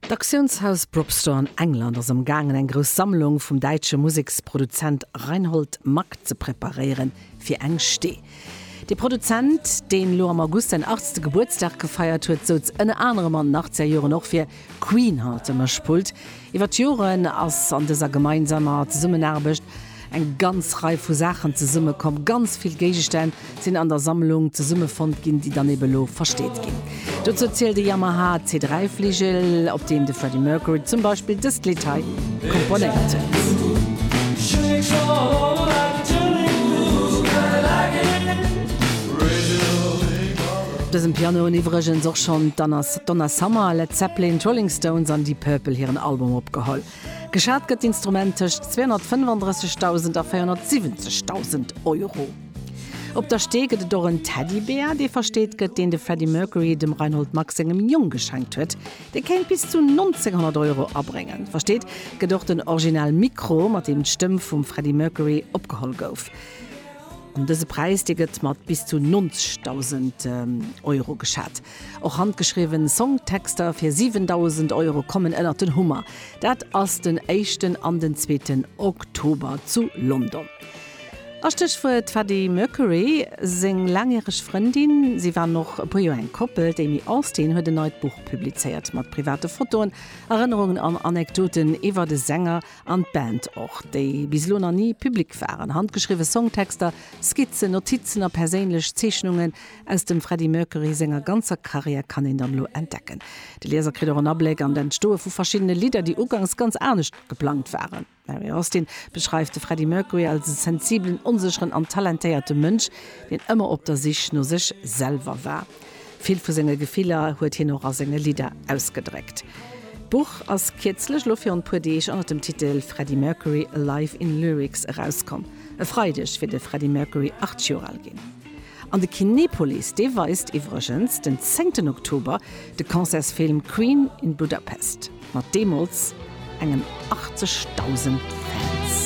D'Auktiounshaus Brobstore an England ass am gaangen eng grouss Sammlung vum däitsche Museksproduzent Reinhold Mack ze preparéieren fir eng Stee. De Produzent, deen elo am August säin 80. Gebuertsdag gefeiert huet, souz ënner anerem an den Achtzegerjoren och fir Queen Heart ënner Spult. Iwwer d'Joren ass an dëser gemeinsamer Zesummenaarbecht eng ganz Rei vu Saachen zesummekomm. Ganz vill Géigestänn sinn an der Sammlung zesummefonnt ginn, déi dann ebe lo versteet ginn. Dozou zielt e Yamaha C3-Fligel, op deem de Freddie Mercury zum Beispill dëst Lidd hei komponéiert huet. Op dësem Piano hunn iwwregens och schonn d'Anna. Donna Summer, Led Zeppelin, d'Rolling Stones an Deep Purple hiren Album opgeholl. Geschat gëtt d'Instrument tëscht 235.000 a 470.000 Euro. Op der Stee gëtt et och en Teddybär, dee versteet gëtt, deen de Freddie Mercury dem Reinhold Mack sengem Jong geschenkt huet. Dee kéint bis zu 1900 Euro abréngen. Versteet gëtt och den Original Mikro, mat deem d'Stëmm vum Freddie Mercury opgeholl gouf. An dëse Präis, dee gëtt mat bis zu 90.000 Euro geschat. Och handgeschriwwen Songtexter fir 7.000 Euro kommen ënnert den Hummer. Dat ass den éischten an den zweeten Oktober zu London. A Stéchwuert Freddie Mercury seng laangjäreg Frëndin, si waren och e puer Joer eng Koppel. D'Amy Austin huet en neit Buch publizéiert mat private Fotoen, Erënnerungen an Anekdoten iwwer de Sänger an d'Band och, déi bis elo nach ni public waren. Handgeschriwwe Songtexter, Skizzen, Notizen a perséinlech Zeechnungen, Aus dem Freddie Mercury senger ganzer Karriär kann een dann elo entdecken. De Lieser kritt och en Abléck an d'Entstoe vu verschiddene Lidder, déi ugangs ganz anescht geplangt waren. D'Mary Austin beschreift de Freddie Mercury als e sensibelen, onsécheren an talentéierte Mënsch, deen ëmmer op der Sich no sech selwer war. Vill vu senge Gefiller huet hien och a senge Lidder ausgedréckt. D'Buch ass kierzlech, elo virun e puer Deeg, ënnert dem Titel Freddie Mercury, A Life in Lyrics erauskomm. E Freideg wier de Freddie Mercury 80 Joer al ginn. An de Kinepolis, dee weist iwwregens den zéngten Oktober de Concertsfilm Queen in Budapest mat deemools engen 80.000 Fans.